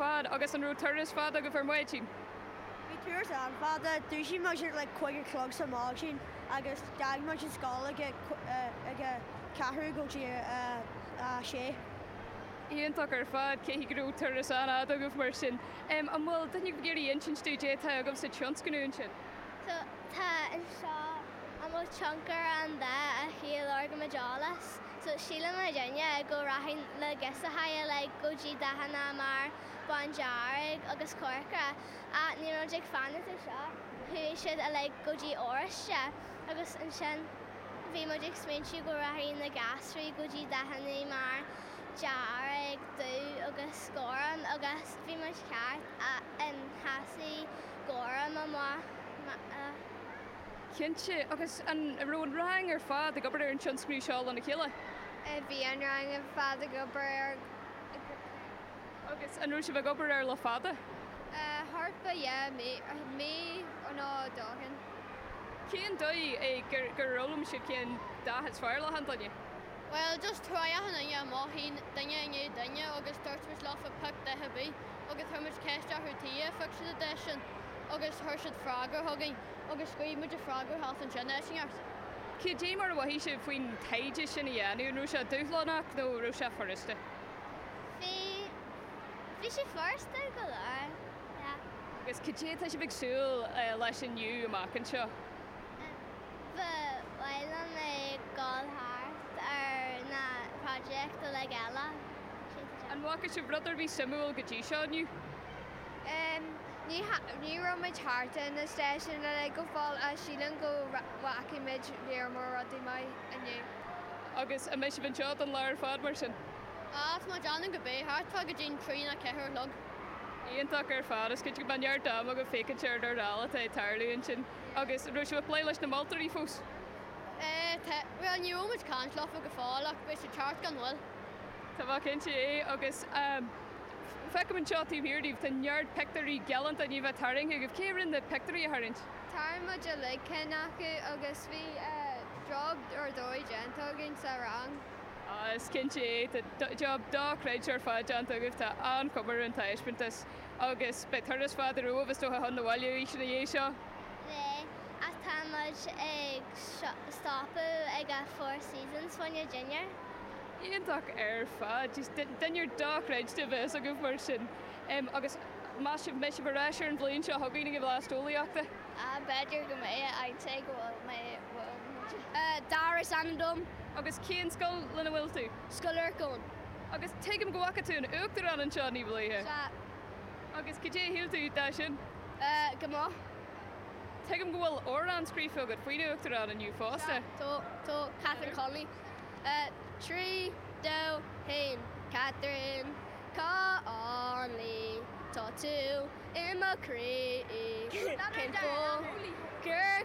fad, agus an raibh turas fada agaibh ar maidin? Bhí turas an-fhada. Dúisigh muid ar like cúig a chlog ar maidin agus d'fhág muid an scoil ag a ag a ceathrú go dtí a a sé. Iontach ar fad, cé go raibh turas an-fhada agaibh mar sin. Em an bhfuil duine ag iarraidh insint dúinn cad é atá agaibh sa tionscnamh ansin? So tá anseo an bhfuil tionchar an dá a thriail ár gcuid eolais. So sílim i dtaobh go rachadh na girseachaí like go dtí dathanna mar bándearg agus corcra ach ní raibh muid ag fanacht air seo, chuaigh siad a like go dtí oráiste agus ansin bhí muid ag smaointiú go rachadh na gasraí go dtí dathanna mar dearg, dubh agus gorm agus bhí muid ceart ach em tháinig gorm amach. Cinnte. Agus an raibh an rang ar fad ag obair ar an tionscnamh seo lena chéile? Bhí an rang ar fad ag obair air go cinnte. Agus an raibh sibh ag obair air le fada? Thart fá dhá mhí, mí nó dhó ó shin. Cén dóigh é gur fhoghlaim sibh cén dath is fearr le achan duine? Bhuel, just thriail achan duine amach, duine i ndiaidh duine, agus dúirt muid leofa pioc dath ar bith. agus chuir muid ceist orthu tuige ar phioc siad an dath sin agus thug siad freagra dúinn agus scríobh muid a freagra thart ansin fhairsing arsa. Cad é mar a mhothaigh sibh faoin taighde sin a dhéanamh, an raibh sé dúshlánach nó an raibh sé furasta? Bhí, bhí sé furasta go leor, yeah. Agus cad é atá sibh ag súil leis inniu amach anseo? Ba mhaith liom a ghabhail thart ar na projects uilig eile, siad seo. An bhfaca sibh rud ar bith suimiúil go dtí seo inniu? Em, ní, ní raibh muid thart ar na stáisiúin uilig go fóill ach sílim go bhfaca muid lear mór rudaí maithe inniu. Agus an mbeidh sibh anseo don lá ar fad, mar sin? Á, tá muid ann go bé, thart fá go dtí an trí nó ceathair a chlog. Iontach ar fad. Is cinnte go mbeidh neart ama agaibh féachaint ar a bhfuil atá ag tarlú ansin. Agus an raibh sibh ag plé leis na moltóirí fós? Tá, bhuel ní raibh muid ag caint leofa go fóill ach beidh siad thart gan mhoill. Tá mé cinnte de agus feicim anseo taobh thiar daoibh tá neart pictiúirí galánta na ndathanna tarraingthe agaibh. Cé a rinne na pictiúirí a tharraingt? Tharraing muid uilig cinn acu agus bhí job ar dóigh déanta againn sa rang. Is cinnte é, tá job dochreidte ar fad déanta agaibh, tá an-chuma ar an taispeántas. Agus beidh turas fada romhaibh is dócha chun an bhaile arís ina dhiaidh seo? Beidh, ach tá muid ag stopadh ag a' Four Seasons fá choinne dinnéar. Iontach ar fad. Jeez, dinnéar dochreidte a bheas agaibh mar sin. Em, agus meas sibh, mbeidh sibh ar ais ar an bhliain seo chugainn ag an Bhlas Eolaíochta? Ah, b'fhéidir go mbeidh, I'd say go bhfuil mé, bhfuil muid. Dara is ainm dom. Agus cén scoil lena bhfuil tú? Scoil Lorcáin. Agus tuigim go bhfaca tú an tUachtarán anseo ní b'luaithe. Sea. Agus cad é a shíl tú de sin? Eh, go maith. Tuigim go bhfuil amhrán scríofa agat faoin Uachtarán inniu fosta. Sea. Catherine Connolly. Eh, trí, dó, haon. Catherine Connolly, tá tú i mo chroí. Cén fáth gur